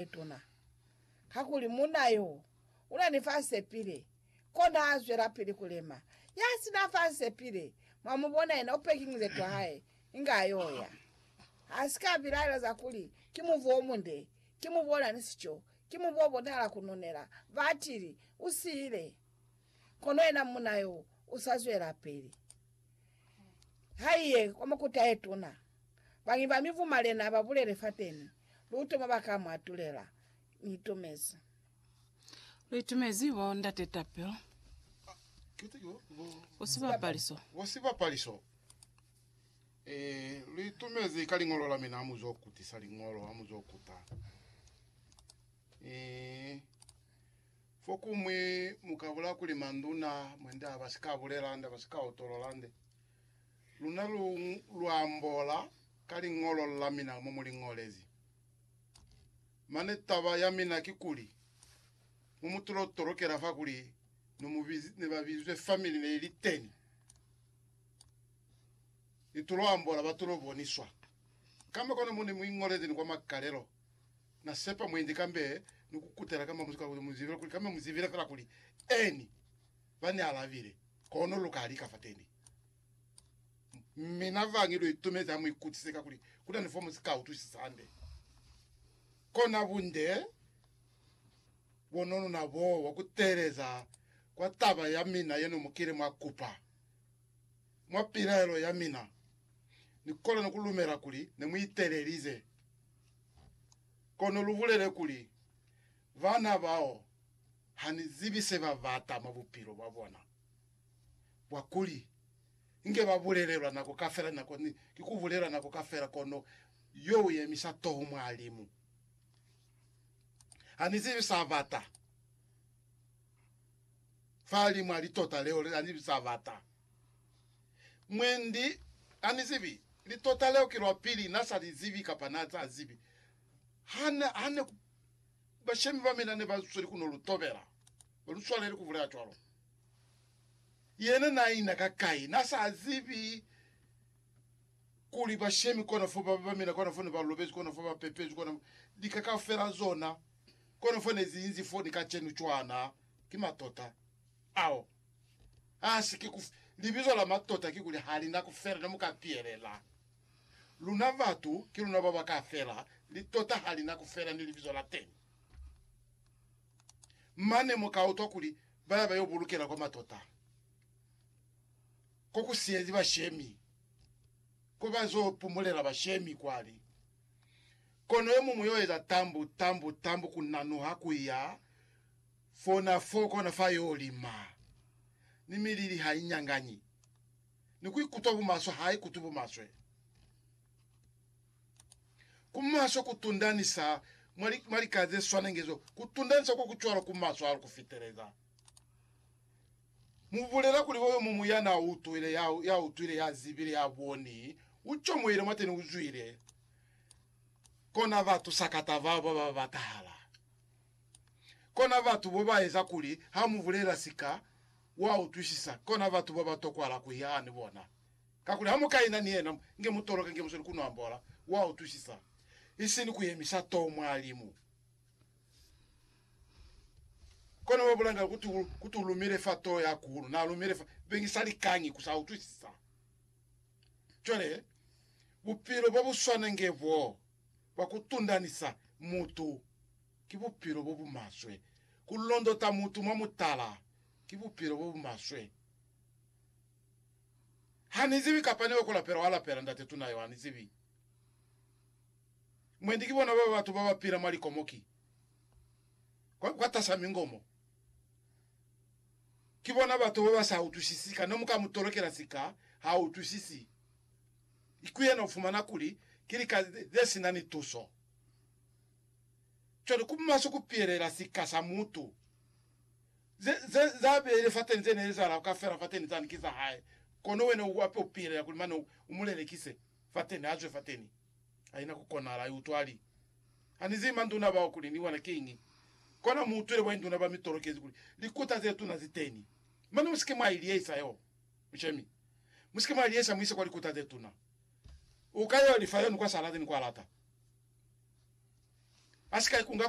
yetuna, kakuli munna yo una ni fansepile, kona a zwelapili kulema. Ya sina fansepile, mwa mu bona yena u pekiñize twa hae, inge a yo ya. Ha si ka bilaelo za kuli, Ki mubu o munde, ki mubu ona ni sico, ki mubu o bonahala ku nunela, batili, u siile. Kono yena munna yo u sa zwelapili. Haiye kwa makuta aetuna. Bañwi ba mibu malena babulele fateni, luto mwa baka mwa tulela. Niitumezi. Lu itumezi bo Ndate Tapelo ku sibapaliso. Ku sibapaliso. Eh, lu itumezi ka liñolo la mina hamuzo kutisa liñolo, hamuzo kuta. Eh. Fokumwi mu ka bula kuli manduna mwende a ba si ka bulela nde, ba si ka utolola nde. Luna lu, lu ambola ka liñolo la mina mo mu li ñolezi. Mane taba ya mina ki kuli, mo mu tulo tolokela fa kuli no mu biz, ne ba bizwe family ne i li teni, ni tulo ambola ba tulo boniswa. Kamba kono mo ne mu iñolezi ni kwa makalelo, Na sepa mwendi kambe ni ku kutela kamba muzimu kuli mu zivile kuli kambe mu zivile fela kuli Eni. Ba ni alabile, Kono lu ka lika fateni. Mina va ngi lu itumezi ha mu ikutise ka kuli ku na ni fo mu si ka utwisisa hande. Kona bunde bono luna bo wa ku teeleza kwa taba ya mina yeno mu kile mwa kupa. Mwa pilaelo ya mina, ni kolani ku lumela kuli ne mu itelelize. Kono lubulele kuli, Bana bao hanizibi sebabata mwa bupilo bwabona bwa kuli inge babulelelwa nako kafela, nako ni ki kubulelwa nako kafela, kono yo uyemisa toho mwa limu. Hanizibi sabata fa limu ali tota leo, hanizibi sabata. Mwendi ha ni zibi. Litota leo ki lwa pili na sa li zibi kapa na sa zibi. Ha ne, ha ne ku, bashemi ba mina ne ba sweli ku no lu tobela. Ba lu swaleli ku bulela cwalo. Yena na ina ka kai? Na sa zibi kuli bashemi kona fo ba, ba mina kona fo ne ba lobezi, kona fo ba pepezi, kona lika kaufela zona, kona fo ne zi inzi fo ni kacenu cwana. Ki matota ao. Hasi ki ku libizo la matota kikuli halina kufela ne muka pielela. Luna batu ki luna baba ka fela, litota halina kufela ni libizo la teni. Mane muka utwa kuli baya bayo bulukela kwa matota ko ku siyezi bashemi, ko ba zo pumulela bashemi kwali. Kono yomuñwi yo eza tambu, tambu, tambu ku nanuha ku ya. Fona fo kona fa yo lima, ni milili ha i nyanganyi, ni ku ikutwa bumaswe ha i kutwi bumaswe. Ku maswe ku tundanisa mwa, mwa lika ze swanenge zo, ku tundanisa ko ku cwalo ku maswe hahulu ku fiteleza. Mu bulela kuli oyo mumu ya n'a utwile, ya, ya utwile, ya zibile, ya boni, u comohile mwateni, u zwile kona batu sakata bao ba ba batahala. Kona batu bo ba eza kuli ha mu bulela sika wa utwisisa, kona batu bo ba tokwala ku ya ni bona. Kakuli ha mu ka ina ni yena, nge mu toloke, nge mu soni ku no ambola, wa utwisisa, isini ku yemisa too mwa limu. Kona wa bulanga kuti, kuti u lumile fa too ya kuhulu, na lumile fa, beñi sa likañi ku sa utwisisa. Cwale, bupilo bo bu swana nge boo, bwa ku tundanisa mutu. ki bupilo bo bu maswe. Ku londota mutu mwa mutala ki bupilo bo bu maswe. Ha ni zibi kapa ni yo ku lapela, wa lapela Ndate tuna yo, ha ni zibi. Mwendi ki bona baba batu ba ba pila mwa likomo ki kwa, kwatas'a mingomo. Ki bona batu ba ba sa utwisisi, ka no mu ka mu tolokela sika, ha utwisisi. Ki yena u fumana kuli ki lika ze si na ni tuso. Cwale, ku maswe ku piyelela sika sa mutu. Ze, ze, ze a beile fateni, ze ne li zala ka fela fateni, zani ki za hae. Kono wena u ape u piyelela kuli mane u, u mu lelekise fateni, a zwe fateni. Haina ku konahala, ai utwa, ali, Ha ni zibi manduna bao kuli ni bona kiñi. Kona mu utwile boinduna ba mi tolokezi kuli likuta ze tuna zi teni. Mane musike mwa i liyehisa yo, mushemi. Musike mwa i liyehisa mu ise kwa likuta ze tuna. Uka yo lifa yono kwa sa lati ni kwa lata. A si ka ikunga ku.